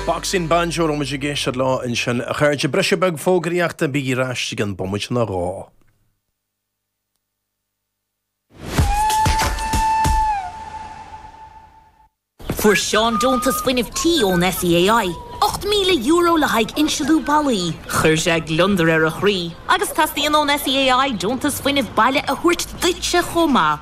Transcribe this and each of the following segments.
Boxing Banjo a raibh muid ag éisteacht leo ansin, a chairde. Briseadh beag fógraíochta, bígí ar ais i gceann bomaite nó dhó! Fuair Seán deontas fuinnimh tí ón SEAI, €8,000 le haghaidh insliú ballaí. Chuir sé gliondar ar a chroí agus teastaíonn ón SEAI deontas fuinnimh baile a thabhairt duitse chomh maith.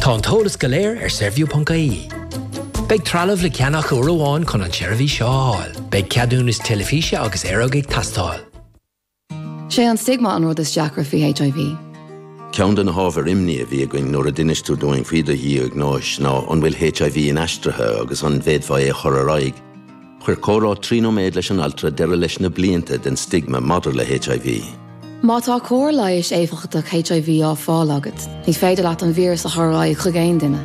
Tá an t-eolas go léir ar Saorview ponc ie. Beidh trealamh le ceannach uair amháin chun an tseirbhís seo a fháil. Beidh ceadúnas teilifíse agus aeróg ag teastáil. Sé an stigma an rud is deacra faoi HIV. Ceann de na hábhair imní a bhí againn nuair a d'inis tú dúinn faoi do dhiagnóis ná an bhfuil HIV inaistrithe agus an bhféadfá é a chur ar aghaidh. Chuir comhrá trí nóiméad leis an altra deireadh leis na blianta den stigma maidir le HIV. Má tá cóir leighis éifeachtach HIV á fáil agat, ní féidir leat an víreas a chur ar aghaidh chuig aon duine.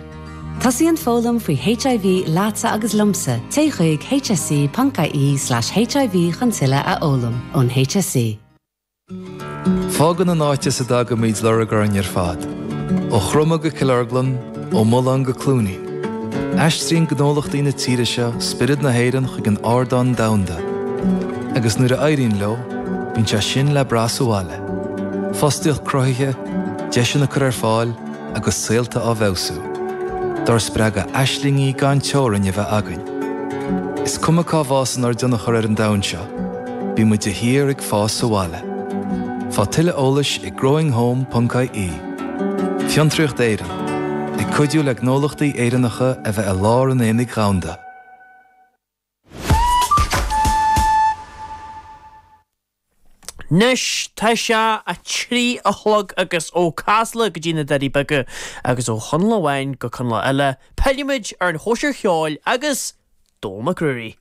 Tosaíonn foghlaim faoi HIV leatsa agus liomsa, téigh chuig hse.ie/hiv chun tuilleadh a fhoghlaim ón HSE. Fágann an áit as a dtagaimid lorg orainn ar fad, ó Chroma go Cill Orglan, ó Mullán go Cluain Eois, aistríonn gnólachtaí na tíre seo spiorad na hÉireann chuig an ardán domhanda agus nuair a éiríonn leo, bíonn sé sin le brath sa bhaile, fostaíocht cruthaithe, deiseanna á gcur ar fáil agus saolta á bhfeabhsú. Dár spreagadh aislingí gan teorainn a bheith againn. Is cuma cá bhfásann ár dtionchar ar an domhan seo, Bímid de shíor ag fás sa bhaile. Faigh tuilleadh eolais ag growinghome ponc ie. Fiontraíocht Éireann, ag cuidiú le gnólachtaí Éireannacha a bheith i lár an aonaigh dhomhanda. Anois tá sé a trí a chlog agus ó Chasla go dtí na Doirí Beaga agus ó Chonall amháin go Conall eile, pillfimid ar an chóisir cheoil agus Dónal Mac Ruairí.